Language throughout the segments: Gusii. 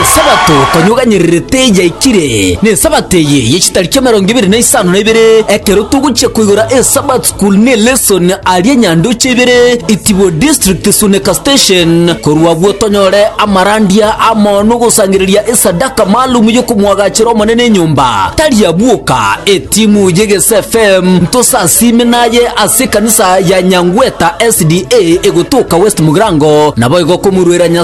Esabato tonyuganyererete yaikire, n'Esabato eye ye chitariki emerongo ebere na isano na ibere, ekero togochia koigora eSabbath School ne lesson aria Nyandoche ibere, Itibo District Suneka Station. Korwa agwo tonyore amarandia amo nogosangereria esadaka maalum yokomwagachera Omonene enyomba. Tari abwo ka, etimu y'Egese FM ntosasiime naye ase ekanisa ya Nyangweta SDA egotoka West Mugirango, naboigo komurwera Nyasae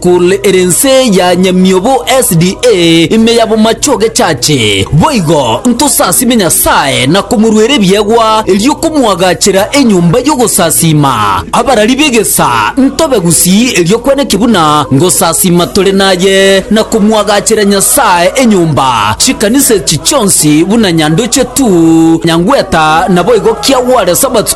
Kore ere ense ya nyamiobo SDA ime ya bomache ogechache, boigo ntosasime Nyasae na komoruera ebiegwa, erio komoagachera enyomba y'ogosasiima abarari b'egesaa ntobe gusii erio kweneki buna ngosasiima tore naye, na komoagachera Nyasae enyomba chikanisa echi chionsi buna nyandoche tu nyangweta naboigo kiagware Sabato.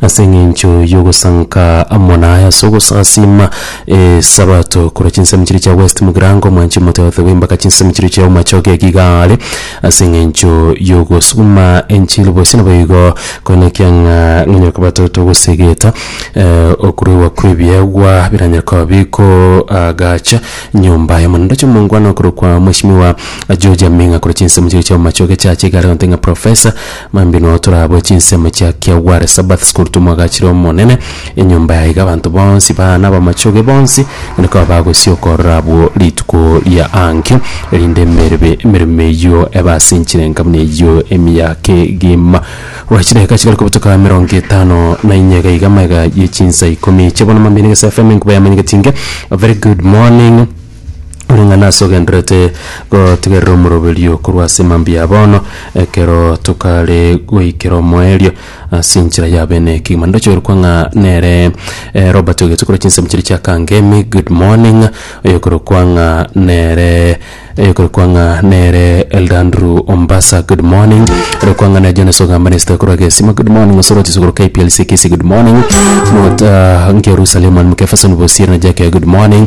Ase engencho y'ogosanka amo naye ase ogosasiima Esabato korwa chinsemo chiria chia West Mugrango, omwanchi omoteote bw'embaka chinsemo chiria chia Omachoge eke igaare ase engencho y'ogosuguma enchili bosi naboigo korende ekiang'a nonye koba toto ogosegeta okuruegwa kw'ebiegwa biranyare koba bikoagacha nyomba y'Omonene. Ndoche omongwana okorokwa Mweshimiwa George Aming'a korwa chinsemo chiria chia Omachoge Church iga are gonte ng'a Professor Mambinoo toraboe chinsemo chia kia Ware Sabbath School tomwagachire Omonene, enyomba yaye iga abanto bonsi baa nabamachoge bonsi onde koba bagosia okorora abwo rituko ria ankio, erinde emerebe emeremo eyio ebe ase enchirenka buna eyio emiaka egima. Gwa chidaeka chigare kobutoka emerongo etano na inye iga iga amaiga ye chinsa ikomi eche bono mambino gese FM enkuba yamanyegeti inge A Very Good Morning. ore ng'a nase ogenderete gotigerera omoroberio korwa ase mambia ya bono, ekero tokare goikera omoerio ase enchera ya bene kegima. Ndochorokwa ng'a nere eh, Robert ogetwe korwa chinsemo chiria chia Kangemi, good morning, oyokorokwa ng'a nere oyokorokwa ng'a nere Elder Andrew Ombasa, good morning, orokwa ng'a nere Jonas Ogambanesta korwa Gesima, good morning, Osoro Chisuguru KPLC Kisii, good morning, Mota Ngerusalem and Mukefeso Bosieri na Jack, good morning.